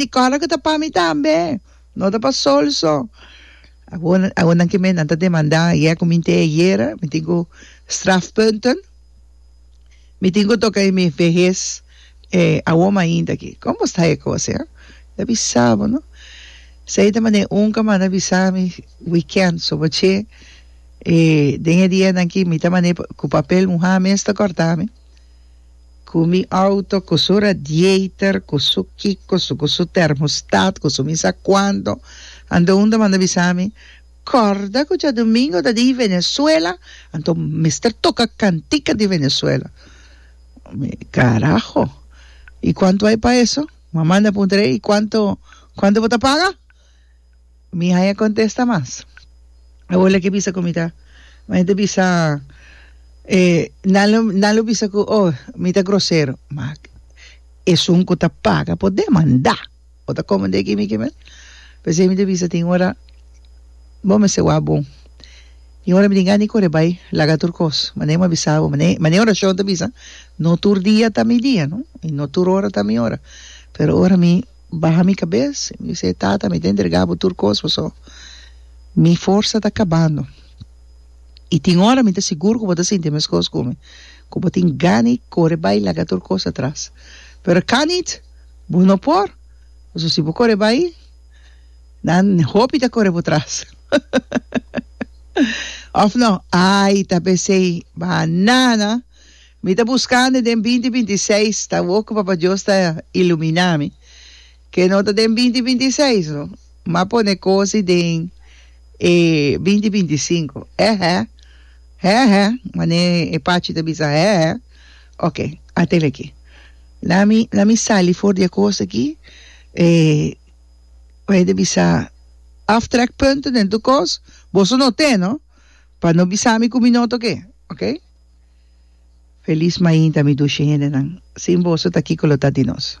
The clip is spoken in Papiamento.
Di kos loke ta pa mi tambe, no ta pa Sol so. Awor, awor nan ke mennan ta demandá ayè ku mi te ayera, mi tin ku strafpunten. Mi tin ku toka e mi vehes e awor mainta aki. Kon bo sta e kos e? Ta bisa bo no. Esei e ta manera e unka manda bisa mi wikènt so bo che e den e dianan ki mi ta manera ku papel muhá mes ta kòrtá mi. Ku mi outo, ku su radiator, ku su kiko, su ku su termostat, ku su mi sa kuanto. Anto un ta manda bisa mi, Kòrda ku djadumingo ta di Venezuela, anto mester toka kantika di Venezuela. Mi, Karaho! I kuanto ai pa eso? Mama manda puntra e, I kuanto, kuanto bo ta paga? Mi haña contesta mas. Awola ke bisa ku mi ta mi ta bisa nan lo nan lo bisa ku oh mi ta grosero ma esun ku ta paga por demanda bo ta komo de aki mi kimin p'esei mi ta bisa tin ora bo mester wak bon tin ora mi tin gana di kore bai laga tur kos manera mi a bisa bo manera manera orashon ta bisa no tur dia ta mi dia no i no tur ora ta mi ora pero ora mi baha mi kabes i mi bis'é, Tata, mi ta entregá bo tur kos, pasobra mi forsa ta kabando. I tin ora mi ta sigur ku bo ta sinti meskos ku mi, ku bo tin gana di kore bai laga tur kos atras. Pero kan nit, bo no por, pasobra si bo kore bai, nan hopi ta kore bo tras. Òf no? Ai, ta bes'ei, Banana! Mi ta buskandi den binti binti i seis, ta awor ku Papa Dios ta iluminá mi, ke no ta den binti binti i seis no, m'a pone kosi den e binti binti i sinku. Hèhè, hèhè, manera e Pachi ta bisa hèhè. Oke, a tende aki. La mi, la mi sali for di e kos aki, e, ku e ta bisa aftrekpunten den tur kos, boso no ten no, pa no bisa mi ku mi no ta oke, oke. Feliz mainta mi dushi hendenan. Sin boso ta kiko lo ta di nos.